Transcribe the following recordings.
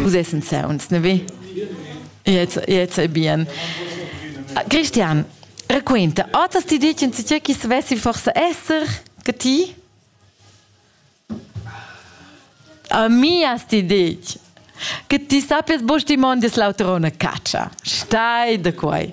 Vus essens ja uns, ne vi? Jetzt, jetzt è bien. Christian, racconta, otas ti ditgen tge che svessi forse esser che ti? A mi as ti ditg che ti sappies bosch di mondis l'autrona caccia. Stai da quai.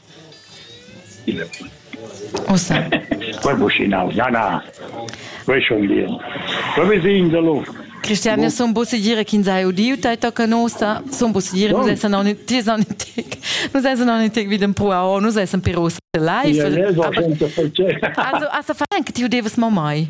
Christian, io sun possedir ch'ins ha udiu tai tocca nossa, sun possedir, nus essan aunc ties aunc in tec, nus essan aunc in tec vid en puau, nus essan però live. Also, also fa anche tiu devas mo mai.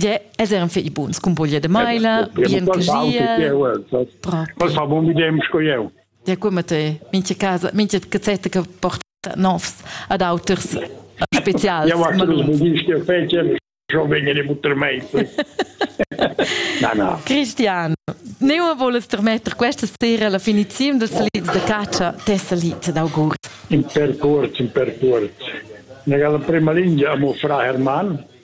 Ja, es eran fei buns cumboglia de maila, bien coschiel. Quels fa buon videm sco jeu. Ja, come te, mincha casa, mincha cazzetta che porta novs ad auters specials. Ja, was du gist fece, schon wegen de buttermeister. na, na. Cristiano, ne voles termetter questa sera la finizione dels lieds de caccia tessa lied d'auguri. In per cuort, in per cuort. Nella prima linea amo fra Hermann,